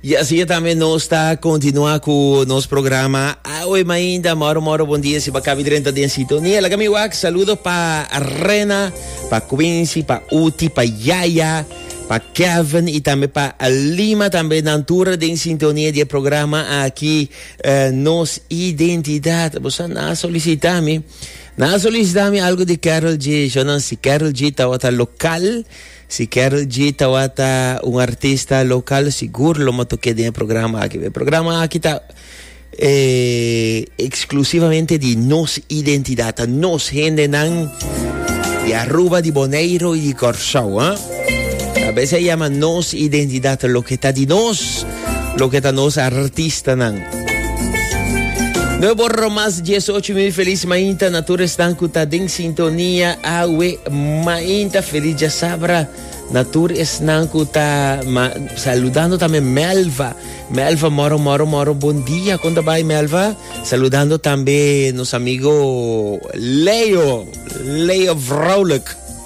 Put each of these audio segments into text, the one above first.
Y así es también nos está continúa con nos programa. Awe mainda, moro moro, buen día. Si va cabi drenta den sintonía. La mi wak, saludo pa Rena, pa Quincy, pa Uti, pa Yaya, pa Kevin y también pa Lima también. Nantura den sintonía de programa aquí. Uh, nos identidad. Vos na solicita mi. Na solicita mi algo de Carol G. Yo no sé, Carol G. Tawata local. Si Karol G tawata un artista local sigur lo motor keda den e programa aki. E programa aki ta e exclusivamente di nos identidad, ta nos hendenan di Aruba, di Boneiro y di Corsou. Tabes a yama nos identidad, loke ta di nos. Loke ta nos artistanan. No borro mas 18 mil feliz mainta na tur esnan ku ta den sintonia awe mainta feliz ya sabra na tur esnan ku ta ma, saludando tambe Melva. Melva moro moro moro bon dia konta bai Melva. Saludando tambe nos amigo Leo. Leo Vrolijk.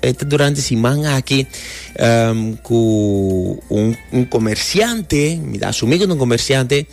E ta durante siman aki cu un comerciante, mi ta asumi cu ta un comerciante,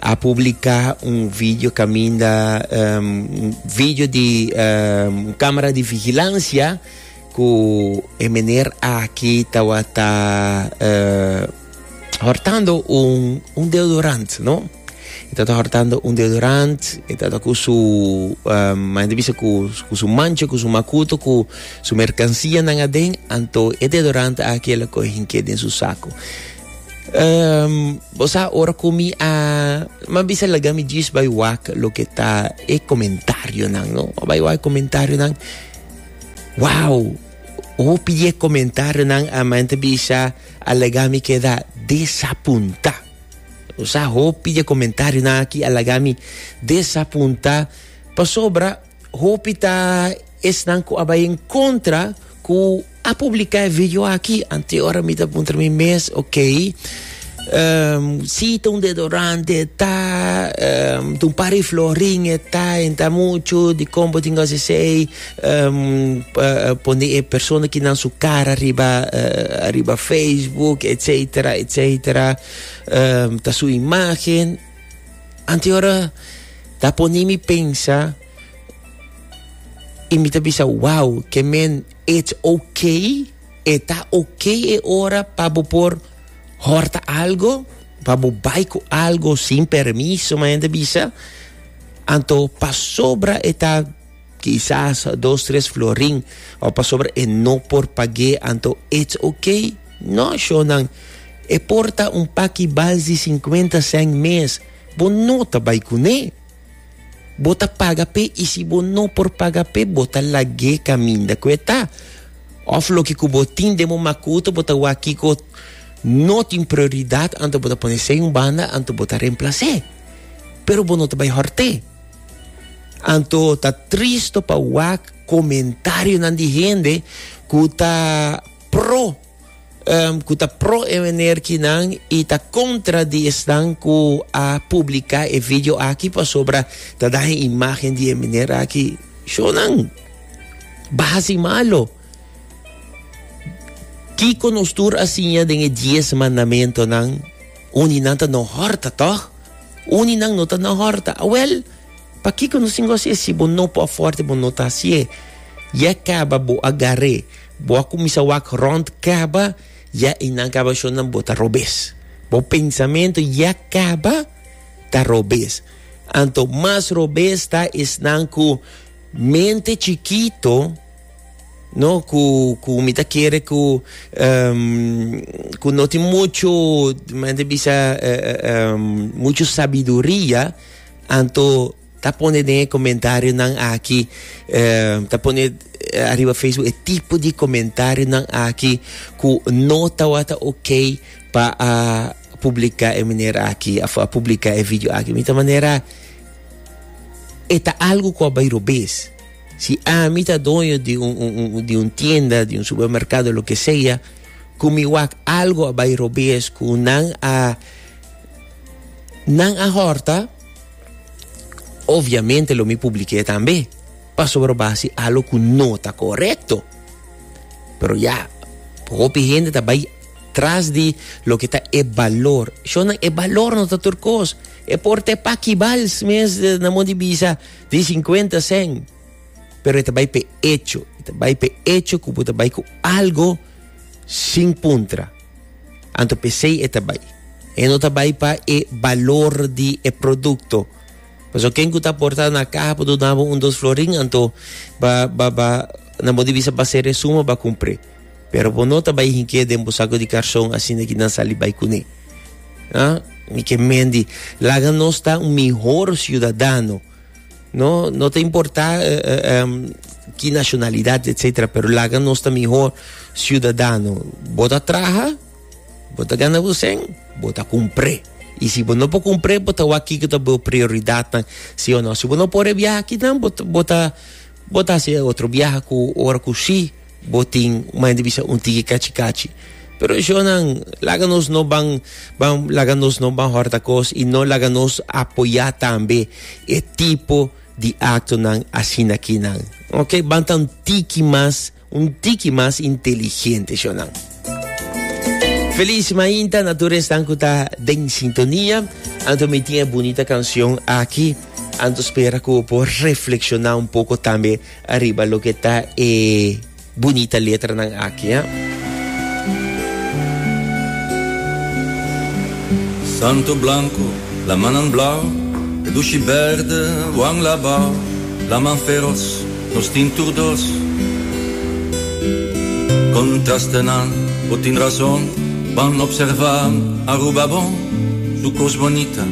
a publica un video caminda, un video di un camera di vigilancia cu e meneer aki tawata hortando un, un deodorant, no? E tata hortando un deodorant, e tata ku su, um, ma gente bisa ku, ku su mancha, ku su makuto, ku su merkansia nan aden, anto e deodorant aki el a kohe hinke den su sako. Um, bosa ora ku mi a, ma bisa laga mi jis bai wak loke ta e komentario nan, no? Ma bai wak e komentario nan, wow! Hopi di e komentario nan a ma gente bisa, Alega mi keda desapunta. Nos sa hopi dje comentarionan aki a laga mi desapunta pasobra hopi ta esnan cu a bay en contra cu a publica e video aki. Anto ora mi ta puntra mi mes, ok, ehm, si ta un deodorante e ta, ehm, ta un par di florin e ta, en ta mucho, dicon bo tin gosi esey? um, pone e persona ki nan su cara riba, uh, arriba Facebook, etcetera, etcetera, um, ta su imagen. Ante ora, ta pone mi pensa, y mi ta bisa, wow, que men, it's okay, está okay e ora pa bo por horta algo, pa bo baiko algo sin permiso, ma gente bisa, anto pasobra eta Kisas dos tres florin o pasobra e no por pag'é anto it's ok. No shownan, e por ta un paki bals di sinkuenta sèn mes, bo no ta bai kuné. Bo ta paga p'é i si bo no por paga p'é bo ta lag'é kaminda ku e ta. Òf loke ku bo tin den bo makuta bo ta wak kiko no tin prioridat anto bo ta pon'é sei un banda anto bo ta remplas'é. Pero bo no ta bai hòrt'é. Anto ta tristo pa wak comentarionan di hende cu ta pro, um, cu ta pro e menerkinan y ta contra di esnan cu a publica e video aki pasobra ta daña e imagen di e mener aki. Shonan, baha si malo. Kico nos tur a siña den e diez mandamentonan? Uninan ta no horta, tòg? Uninan no ta no horta. Awèl, pakiko no sin gosi e si bo no por afòrta i bo no ta hasié? Ya kaba bo a gar'é, bo a kuminsá wak rònt kaba, ya einan kaba shonnan bo ta robes. Bo pensamentu ya kaba ta robes. Anto mas robes ta esnan ku mente chikito. No cu cu mi ta kere cu um, cu no tin mucho mente bisa uh, uh, um, mucho sabiduria anto ta pone den e comentario nan aki uh, ta pone uh, arriba Facebook e tipo di comentario nan aki cu no ta wata ok pa a publica e manera aki of a publica e video aki mi ta manera e ta algo cu a bay robes Si ami ta doño di un, un, un, di un tienda, di un supermercado, lo que sea, cu mi wak algo a bay robes, cu nan a, nan a horta, obviamente lo mi publiqué también. Pasobra basi algo cu no ta correcto. Pero ya, hopi gente ta bay tras di lo que ta e valor. Shona, e valor no ta tur cos. E porte pakibals mes na mo di bisa. Tin sinkuenta sen, pero e ta bai pe echo. E ta bai pe echo ku bo ta bai ku algo sin puntra. Anto pesei e ta bai. E no ta bai pa e balor di e produkto. Paso ken ku ta porta na kaha por duna bo un dos florin, anto ba, ba, ba, nan bo di bisa ba se resuma, ba kumpré. Pero bo no ta bai hink'é den bo saku di karson asina ki nan sali bai kuné. Ha? Mi ke men di, laga nos ta un mihor siudadano. No, no ta importá eh, eh, em, ki nashonalidat, etsetera, pero laga nos ta mihor siudadano. Bo ta traha, bo ta gana bo sen, bo ta kumpré. I si bo no por kumpré, bo ta wak kiko ta bo prioridatnan, sí o no. Si bo no por e biaha akinan, bo ta, bo ta, bo ta hasi e otro biaha ku ora ku sí. Bo tin mania di bisa un tiki kachi kachi. Pero eshonan laga nos no ban ban laga nos no ban horta kos y no laga nos apoya tambe e tipo di actonan asina kinan. Ok ban ta un tiki mas un tiki mas inteligente eshonan. Feliz mainta na tur esnan ku ta den sintonia. Anto mi tin e bunita canción aki. Anto spera ku por reflexiona un poco tambe Ariba loke ta e bunita letranan aki, a. Santu blanku, lamannan blau, e dushi bèrde wan labau, laman feros, nos tin tur dos. Kontrastenan, bo tin rason, ban observá Aruba bon, su kos bonita.